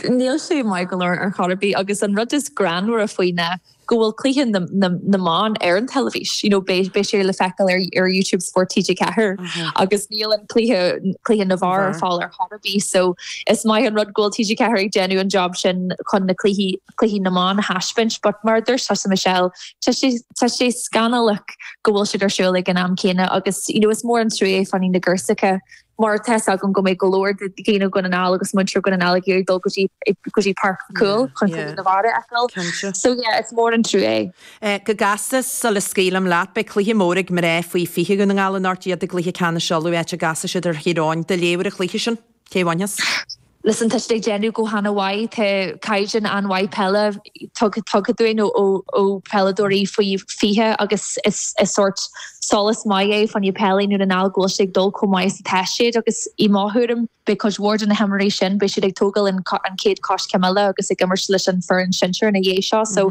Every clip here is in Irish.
Níl sé maith go leor ar chor ar bith agus an rud is greannmhaire faoi ná go bhfuil cluiche na mban ar an teilifís, you know beidh sé le feiceáil ar Youtube Spórt TG4 agus níl an cluiche cluiche na bhfear ar fáil ar chor ar bith so is maith an rud go bhfuil TG4 ag déanamh an job sin chun na cluichí cluichí na mban a thaispeáint but mar a dúirt tusa Michelle tá sé tá sé scannalach go bhfuil siad ar siúl ag an am céanna agus you know is mór an truaí é fá choinne na ngirseacha mar tá fhios agam go mbeidh go leor de dhaoine Dhún na nGall agus muintir Dhún na nGall ag iarraidh dul go dtí go dtí Páirc Mhic Cumhaill chun cluiche na bhfear a fheiceáil. Cinnte. So yeah, is mór an trua é. Go gasta, sula scaoilim leat, beidh cluiche mór ag mná faoi 20 Dhún na nGall anocht i gCluiche Ceannais Uladh áit a gcasfaidh siad ar Thír Eoghain. Do léamh ar an chluiche sin? Cé a bhainfeas? Listen, tá siad ag déanamh go hana-mhaith, tá caighdeán an-mhaith peile tugtha dúinn ó pheileadóirí faoi 20 agus is sórt sólas maith é fá choinne peil i nDún na nGall go bhfuil sé ag dul chomh maith is atá siad agus i mo thuairim, beidh cuid mhór de na himreoirí sin, beidh siad ag tógáil an chéad choiscéim eile agus ag imirt leis an fhoireann sinsir ina dhiaidh seo so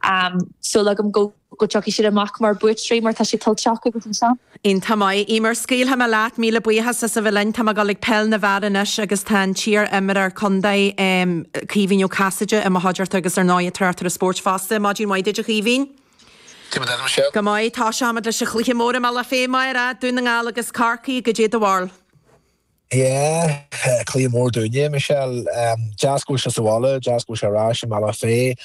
tá súil agam go. go dtiocfaidh siad amach mar buaiteoirí mar tá sé tuillte acu agus an seans. Iontach maith, Emer, scaoilfidh mé leat, míle buíochas as a bheith linn. Tá mé ag dul ag peil na bhfear anois agus tá an t-iar-imreoir contae, em, Caoimhín Ó Casaide i mo chuideachta agus ar ndóigh tráchtaire spóirt fosta. Maidin mhaith duit, a Chaoimhín. Caidé mar tá sibh, Michelle. Go maith, táis a'm fhad leis an chluiche mór i mBealach Féich amárach, Dún na nGall agus Corcaigh, caidé do bharúil. Yeah, cluiche mór dúinne é Michelle. Deas go bhfuil sé sa bhaile, deas go bhfuil sé ar ais i mBealach Féich.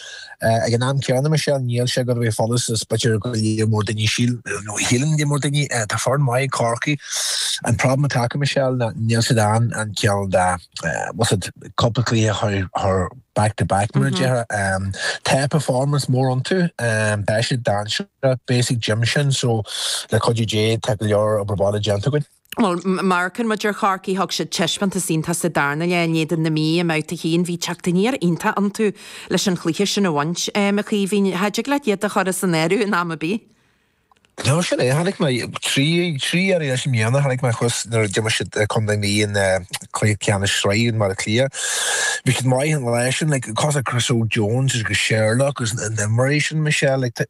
Ag an am céanna Michelle, níl sé ag gabháil a bheith chomh furast is b'fhéidir go leor mór daoine síl, nó shíleann go leor daoine. Tá foireann maith ag Corcaigh. An problem atá acu Michelle ná níl siad in ann cineál dhá, what's it, cúpla cluiche a chur chur back to back mar a déarfá. Tá performance mór iontu. Tá siad dainséarach. Beidh fhios ag Jim sin so le cuidiú Dé tá go leor obair bhaile déanta againn. Bhuel, má amharcann muid ar Chorcaigh, thug siad teispeántas iontach sa darna leath in éadan na Mí i mbabhta 1. Bhí teacht aniar iontach iontu leis an chluiche sin a bhaint, a Chaoimhín. Cha dtig leat iad a chur as an áireamh in am ar bith. No, sin é. Chonaic mé trí, trí iarraidh leis i mbliana, chonaic mé thuas nuair a d'imir siad contae na Mí in cluiche ceannais sraithe i mBaile Átha Cliath. Bhí siad maith an lá sin, like, cosúil le Chris Jones agus Sherlock agus na himreoirí sin, Michelle, like,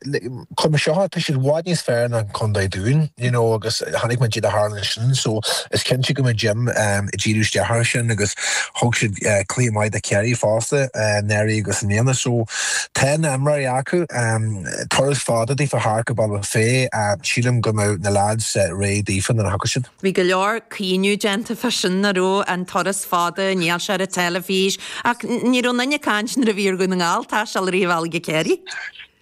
Chuir mé seo, tá siad i bhfad níos fearr ná an Contae Dúin, you know agus chonaic muid caidé a tharla ansin, so is cinnte go mbeidh Jim ehm ag díriú isteach ar sin agus thug siad eh cluiche maith do Kerry fosta eh anuraidh agus i mbliana so tá na himreoirí acu ehm turas fada daofa thart go Bealach Féich ehm sílim go mbeidh na lads eh réidh daofa nuair a thiocfaidh siad. Bhí go leor caoineadh déanta fá sin a raibh an turas fada, níl sé ar an teilifís ach ní raibh duine ag caint nuair a bhí ar Dhún na nGall taisteal riamh uilig go Kerry.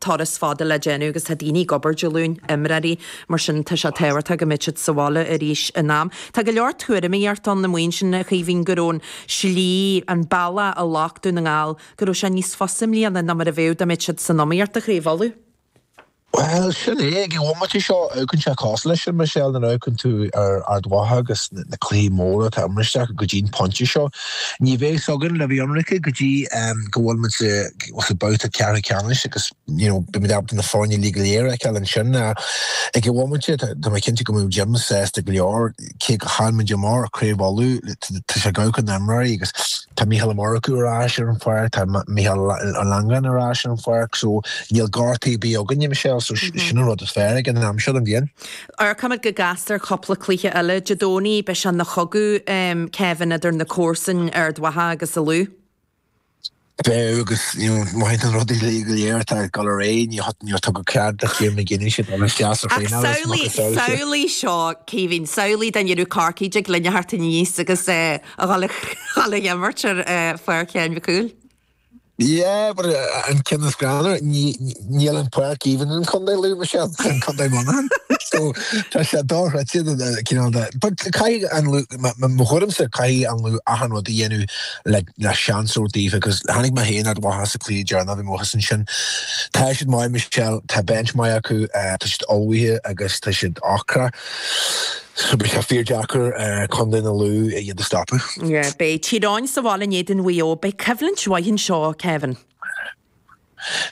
turas fada le déanamh agus tá daoine ag obair Dé Luain, imreoirí, mar sin tá sé tábhachtach go mbeidh siad sa bhaile arís in am. Tá go leor tuairimíocht ann, na maoin sin, a Chaoimhín, go raibh an slí, an bealach a ghlac Dún na nGall, go raibh sé níos fusa i mbliana ná mar a bheadh dá mbeadh siad san iomaíocht, a Chraobh Uladh. Bhuel, sin é, ag an bhomaite seo amharcann sé cosúil leis sin, Michelle, nuair a amharcann tú ar Ard Mhacha agus na cluichí móra atá imeartha acu go dtí'n pointe seo. Ní bheidh 's againn le bheith ionraic go dtí go bhfuil muid sa babhta ceathrú ceannais agus you know beidh muid ábalta na foirne uilig go léir a fheiceáil ansin ag an bhomaite. Tá mé cinnte go mbeidh Jim sásta go leor cé gur chaill muid amach ar Craobh Uladh, tá sé ag amharc ar na himreoirí agus tá Micheál Ó Murchú ar ais ar an pháirc, tá Michael Langan ar ais ar an pháirc so níl gortaí ar bith againne Michelle so sin an rud is fearr ag an am seo den bhliain. Amharcaimid go gasta ar cúpla cluiche eile Dé Domhnaigh, beidh sé ina chogadh, Kevin, idir na comharsain Ard Mhacha agus an Lú. Beidh, agus mothaíonn an rud uilig go léir atá ag dul ar aghaidh, níor tugadh cead do Chiarán McGeeney a dul isteach a thraenáil is mó go saol seo. Ach samhlaigh seo, Caoimhín, samhlaigh dá ndéanadh Corcaigh de gloine theacht aníos agus a dhul ag imirt ar pháirc Sheáin Mhic Cumhaill. Yeah, but an ceann is greannmhaire, níl an páirc even in Contae Lú, Michelle, in Contae Muineacháin. So, tá sé dochreidte, cineál de, but caithfidh an Lú, mo thuairimse, caithfidh an Lú achan rud a dhéanamh le, le seans a thabhairt daofa, because chonaic mé féin Ard Mhacha sa chluiche deireanach, bhí mé thuas ansin. Tá siad maith, Michelle, tá bench maith acu, tá siad ullmhaithe agus tá siad ocrach. Beidh sé fíor deacair ag Condae na Lú iad a stopadh. Beidh Tír Eoghain sa bhaile in éadan Mhaigh Eo. Beidh coimhlint mhaith anseo, Kevin.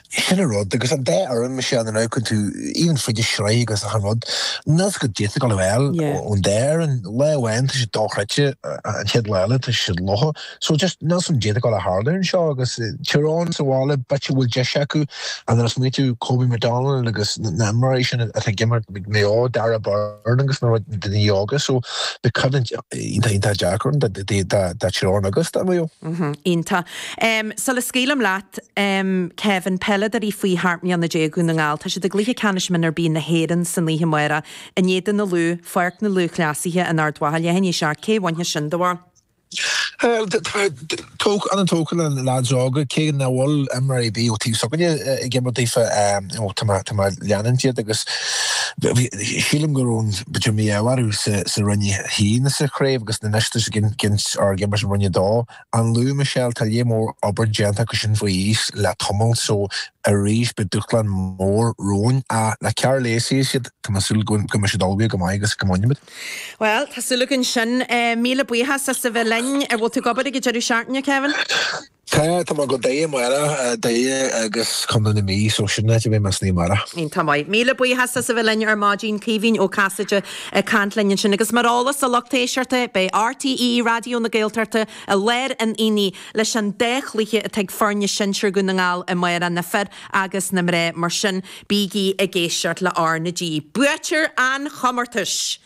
Sin an rud, agus an dá fhoireann, Michelle, nuair a amharcann tú, even fríd an tsraith agus achan rud, níl 's agat caidé atá tú ag dul a fháil ón dá fhoireann, lá amháin tá siad dochreidte, an chéad lá eile tá siad lofa. So just níl 's agam caidé atá ag dul a tharlú anseo agus Tír Eoghain sa bhaile b'fhéidir go bhfuil deis acu nuair a smaoitíonn tú Kobe McDonald agus na himreoirí sin atá ag imirt ag Maigh Eo, Darragh Beirne agus na daoine óga so beidh coimhlint iontach iontach deacair ann do do do do Thír Eoghain agus do Mhaigh Eo. Mhm iontach. Em sul a scaoilim leat em Kevin peileadoirí faoi sheacht mbliana déag Dhún na nGall tá siad i gcluiche ceannais mionúr B na hÉireann san oíche amárach in éadan na Lú, Pháirc na Lúthchleasaithe in Ard Mhacha leath i ndiaidh a seacht cé bhainfidh sin do bharúil? Tá mé an-tógtha le na leaids óga, cé nach bhfuil imreoir ar bith ón taobh s'againne ag imirt daofa, tá mé ag leanúint iad agus sílim go raibh, giota mí-ádh orthu, sa Roinn 1 sa chraobh agus anois tá siad ag imirt in Roinn 2. An Lú, Michelle, tá lear mór obair déanta acu sin faoi aois le tamall so arís beidh dúshlán mór romhainn ach le Karl Lacey is iad tá mé ag súil go mbeidh siad ullmhaithe go maith agus go mbainfimid. Bhuel, tá súil againn sin. Míle buíochas as a bheith linn. An bhfuil tú ag obair ag an deireadh seachtaine, Kevin? Tá, tá mé go Doire amárach, Doire agus Contae na Mí, so sin áit a bheidh mise amárach. Tá maith. Míle buíochas as a bheith linn ar maidin, Caoimhín Ó Casaide ag caint linn ansin. Agus mar eolas do lucht éisteachta, beidh RTÉ Raidió na Gaeltachta i lár an aonaigh leis an dá chluiche atá ag foirne sinsir Dhún na nGall amárach, na fir agus na mná. Mar sin. Bígí ag éisteacht le R na G, buaiteoir an chomórtais!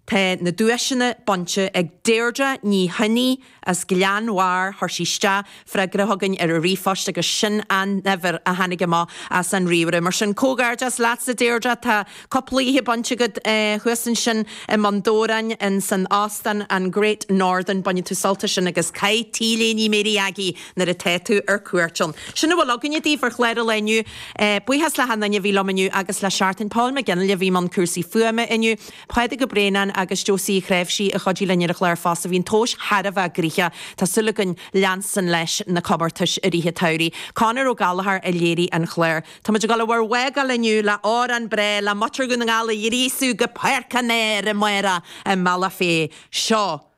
Tá na duaiseanna bainte ag Deirdre Ní Choinnigh as Gleann Bhairr. Chuir sí isteach freagra chugainn ar an ríomhphost agus sin an uimhir a tháinig amach as an ríomhaire. Mar sin, comhghairdeas leatsa Deirdre, tá cúpla oíche bainte agat thuas ansin i mBun Dobhráin in san Óstán an Great Northern, bainfidh tú sult as sin agus caith T-léine Mary Aggie nuair atá tú ar cuairt ann. Sin a bhfuil againne daoibh ar chlár an lae inniu. Buíochas le hachan duine a bhí liom inniu agus le seachtain. Paul McGinley a bhí i mbun cúrsaí fuaime inniu, Pádraig Ó Braonáin agus Josie Uí Chnáimhsí a chuidigh linn ar an chlár fosta. Bhí an tomhais thar a bheith gnoitheach. Tá súil againn leanstan leis na comórtais i rith an tsamhraidh. Conor Ó Gallchóir a léirigh an chlár. Táimid ag dul a bhur bhfágáil inniu le amhrán breá le muintir Dhún na nGall a ghríosadh go Páirc an Áir amárach i mBealach Féich. Seo.